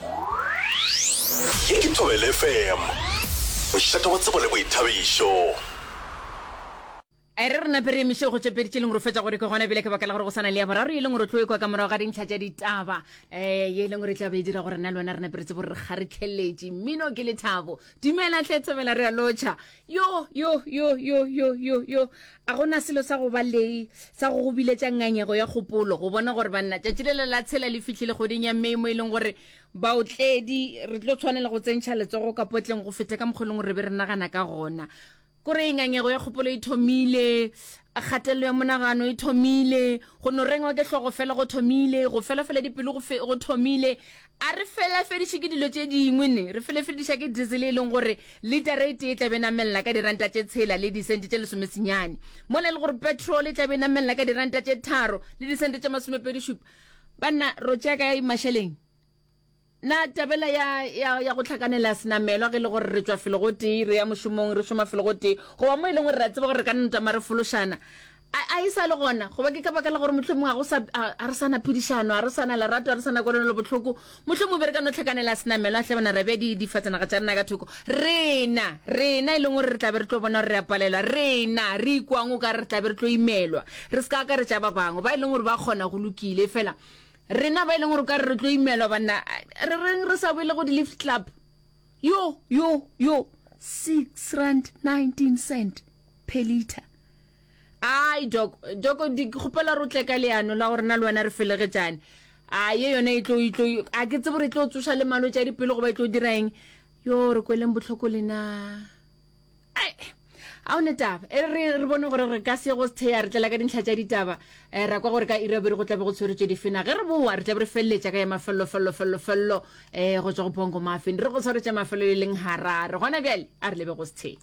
Ye ke Thobela FM, mošate wa tsebo le boithabišo. A e re re nape re emiše go tšepeditše e leng gore fetša gore ke gona ebile ke baka la gore go sana le ya boraro e leng gore tlo ekwa ka morago ga dintlha tša ditaba um eh, ye e leng gore e tla be e dira gore na le wena re naperetse bore re kgaretlheletše mmino ke lethabo dumela tle tsebela re a lotšha yo yo yo yo yo yo yo a gona selo sa go ba lei sa go go biletša ngangego ya kgopolo go bona gore banna tšatši le le la tshela le fihlile kgweding ya mei mo e leng gore baotledi re tlo tshwanela go tsentšha letsogo ka potleng go feta ka mokgolong re be re nagana ka gona kore e ngangego ya kgopolo e thomile kgatelelo ya monagano e thomile go no rengwa ke hlogo fela go thomile go felafela dipelo go thomile A re felafediše ke dilo tše dingwe ne, re felefediša ke diesel e leng gore litara e tee e tla be e namelela ka diranta tše tshela le disente tše lesomesenyane, mola e le gore petrol e tla be e namelela ka diranta tše tharo le disente tše masomepedi-šupa. Banna, ro tšea kae mašeleng? Na tabela ya, ya, ya go hlakanela senamelwa ge e le gore re tšwa felo gotee re ya mošomong, re šoma felo gotee, goba mo e leng gore re a tseba gore re ka nna tama re fološana? A, a e sa le gona? Goba ke ka baka la gore mohlomongwe ga go sa, a, a re sa na phedišano, a re sa na lerato, a re sa na kwelonelobohloko? Mohlomongwe be re ka no tlhakanela senamelwa, a hlabana, ra bea di, difatsanaga tša rena ka thoko. Rena, rena e leng gore re tla be re tlo bona gore re a palelwa, rena, re ikwang o ka re re tla be re tlo imelwa, re se ka akaretša ba bangwe, ba e leng gore ba kgona, go lokile, efela rena ba e leng gore o ka re re tlo imelwa, banna, re reng re sa boele go di-lift club? Yo, yo, yo! Six rand nineteen cent per litre. ai doko doko di kgopela ro tle ka leano la gore na le wena re felegetšane a ye yone e tlo e tlo a ke tsebo re tlo tsoša le malwetse a dipelo goba e tlo dira eng yo re kweleng botlhoko lena ai a one taba e re re bone gore re ka se go sethea re tlela ka dintlha tša ditaba um ra kwa gore ka irabere go tlabe go tshweretswe difena ge re boa re tlabe re feleletša ka ya mafelelo felelo felelo felelo um go tswa go bongo mafeng re go tshwaretša mafelelo e leng harare gona bjale a re lebe go sethea